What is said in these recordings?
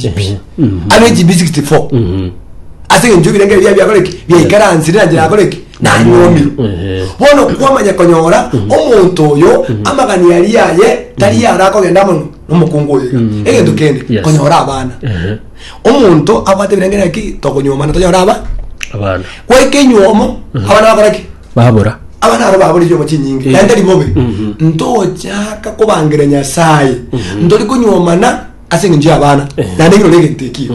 Chibiyi. ano echibi 64 ase eng'encho ebirenge ebia biakoreki biaikaransire na njira yakoreki nanyomirwe Ehe. bono kwamanya konyora omonto oyo amagani ari aye tari ara akogenda amo nomokungu oyo iga egento kende Yes. konyora abana Ehe. omonto abwate ebirenge naki tokonyomana tonyora aba abana gwaika enyomo abana bakoreki babura abana aro baborire omo chinyingi naende ribobe ntogochaka kobangira nyasaye ntori konyomana ase engencho y'abana naende ekero ore egento ekiyo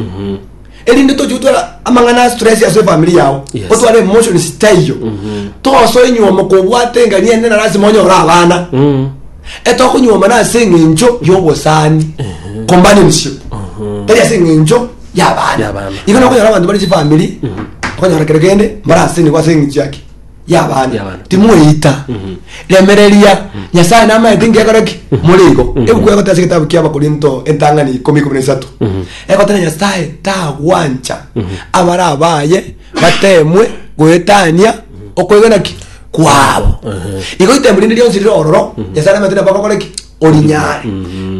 erinde toche gotwara amang'ana a stress ase efamiri yao Yes. otware emotion zitaiyo tosoe nyuoma kobwate engani ende na lasima onyore abana Mm. etokonyuomana ase eng'encho y'obosani companionship tari ase eng'encho Y'abana. y'abana igo nokonyora abanto bari chifamiri okonyora kere kende mbaraseniwe ase eng'encho yaki y'abaana Y'abaana. timoeita remereria nyasae namaete ngekore ki more igo ebuku egoteba ase egetabu ki'abakorinto entang'ani ikomi ikomi na isato egoteba nyasae tagwancha abare abaye batemwe goetania okoegena ki kwabo igo ritemwa rinde rionsi rire ororo nyasae namaete nabo agokore ki orinyare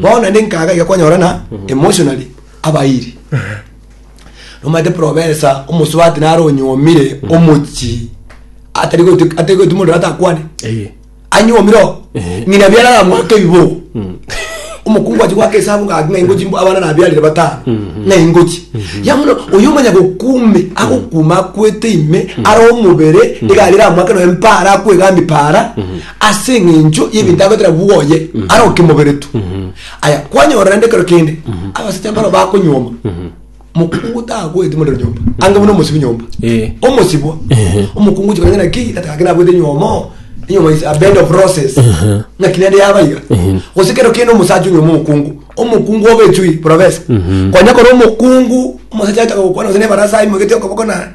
bono naende nkaga iga kwanyora na emotionally abairi Nomanyete profesa omosubati naro onyuomire omochi atari gotu- atari gotu mondo atakwane Eye. anyuomire oo Ehe. ng'ina biarara mwaka ebibogo omokungu achi gwaka esabu ngaki ng'a ingochi mbo- abana nabiarire batano ng'a ingochi yamuno oyo omanya gokume agokuma akwete ime are omobere egari eramwake noyo mpara akwegambia para ase eng'encho y'ebinto agoetera bwoye are okemobere tu Aya, kwanyorora rende ekero kende abasacha mbaro bakonyuoma mokungu tagweti morero nyomba ange buna omosibi nyomba Eh. omosibwa omokungu chikanya naki atagaki nabwete nyuomo nyuomo is a bed of roses naki nende yabaiga gose kero kende omosacha onyuoma omokungu omokungu obechui porobesa kwanya kora omokungu omosacha ataka gokwana gose nebarasa imwegete okoboko na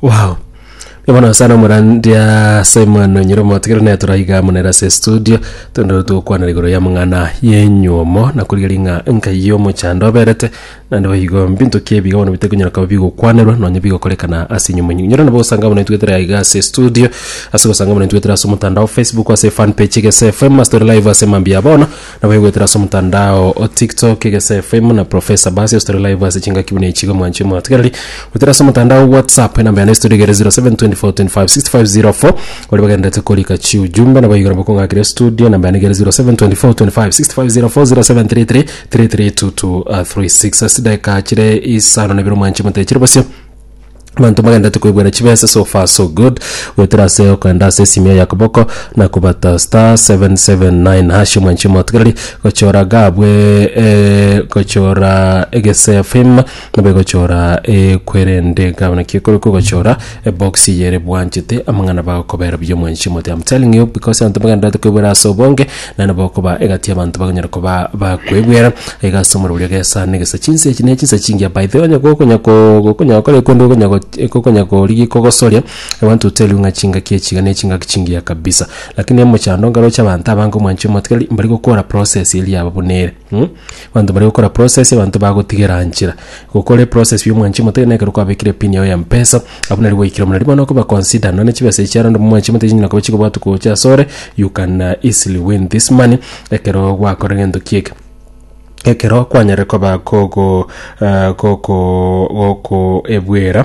Wow. Bono sana omorandia Simon Nyiromotigere naye toraiga munere ase studio tondoro togokwanera igoro ya mang'ana yenyuomo na korigeria ng'a enkai y'omochando oberete naende boigo mbinto ki ebiga bono bite konyara koba bigokwanerwa nonye bigokorekana ase enyumo enyu inyora nabo osanga buna itwetera iga ase studio ase gosanga buna itwetera ase omotandao Facebook ase fan page Gese FM ase tore live ase mambia bono Nabaigwetera ase omotandao o TikTok, Gese FM na Professor Bass estore live ase chingaki buna echi iga mwanche mwatogereri. Gwetera ase omotandao o WhatsApp enamba yane estore igere 0724256504 baria bagenderete korika chiujumbe nabayiga nabo kong'akera estudio enamba yane igere 0724256504 0733332236 ase chidakika chire isano na ibere mwanche moteche ribaso Abanto bagendete koibuera chibesa so far so good goetera ase okoenda ase esimia ya koboko na kobata star 779 hash omwanchi omotigereri gochora gabwe eh, gochora egese fim nabo egochora ekwerende gabo naki ekore kogochora ebox yere bwanchete amang'ana bagokobera buya omwanchi omote I'm telling you because abanto bagendete koibuera ase obonge na nabo okoba egati y'abanto bakonyara koba bakwegwera, aiga ase omorero oria gesa negesa. Chinsa echi ne chinsa chingiya by the way, onye gokonya ko- gokonya gokora ebi korende okonya go- gokonya korigia kogosoria, I want to tell you ng'a chingaki echi iga ne chingaki chingiya kabisa. Lakini omochando ngaroche abanto abange omwanchire omotigari, mbari gokora process eria yabo buna ere. Mh, abanto bare gokora process, abanto bagotigera nchera. Gokore process ya omwanchima ote, na ekero kwabekire pin yago ya mpesa, abwo nari gwaikire omonene. Riria bono okoba consider, nonya chibesa echi aro onde omwanchima ote chinyara koba chikobwatwa gocha ase ore, you can easily win this money ekero gwakora egento ki eke. Ekero kwanyarire koba kogo eh, gokooo gokoebwera.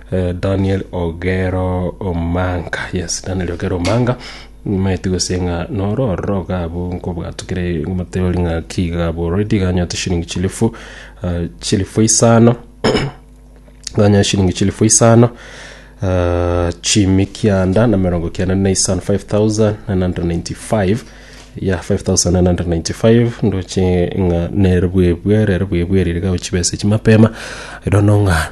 Daniel Ogero Omanga, yes, Daniel Ogero Omanga, nimaeti gose ng'a noro ororo iga abwo nkobwatwa kere moteori ng'a ki iga abwo already iga anyorete shilingi chilifu ah, chilifu isano ganya shilingi chilifu isano ah, chimi kianda na mirongo kianda na isano 5995 ya 5995 ndoche ng'a nere bwebwe rere bwebwe rire gao chibesa echi mapema erono ng'a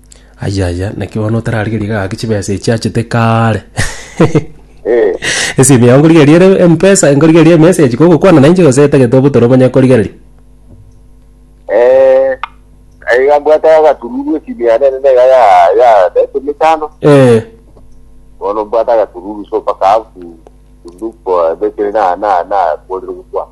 Aye aye, naki bono otararigeria gaki chibesa echi achete kaare. Eh, Esimi yao nkorigereria ere mpesa, nkorigereria emessage kogokwana na inche gose etagete obotore omanye korigereria. eh, aiga mbwate agatururu esimi yane ere naiga ya ya daito mitano Eh, bono mbwate agatururu so mpaka afu look for message na na na korire gokwana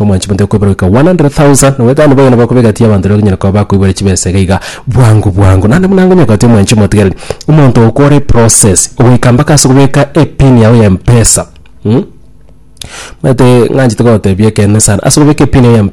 Omwanchi monto okoiborogeka 100,000, na bwekando boigo nabwo akobegatia abanto rero okonyara koba bakoibora chibesa iga iga bwango bwango. Naende buna ngonyoka gati omwanchi omotigareri, omonto okore process ogoika mpaka ase kobeka epin yago ya mpesa, mh, omanyete ng'anchete gotebia ekeene sana ase kobeka epin yago ya mpesa.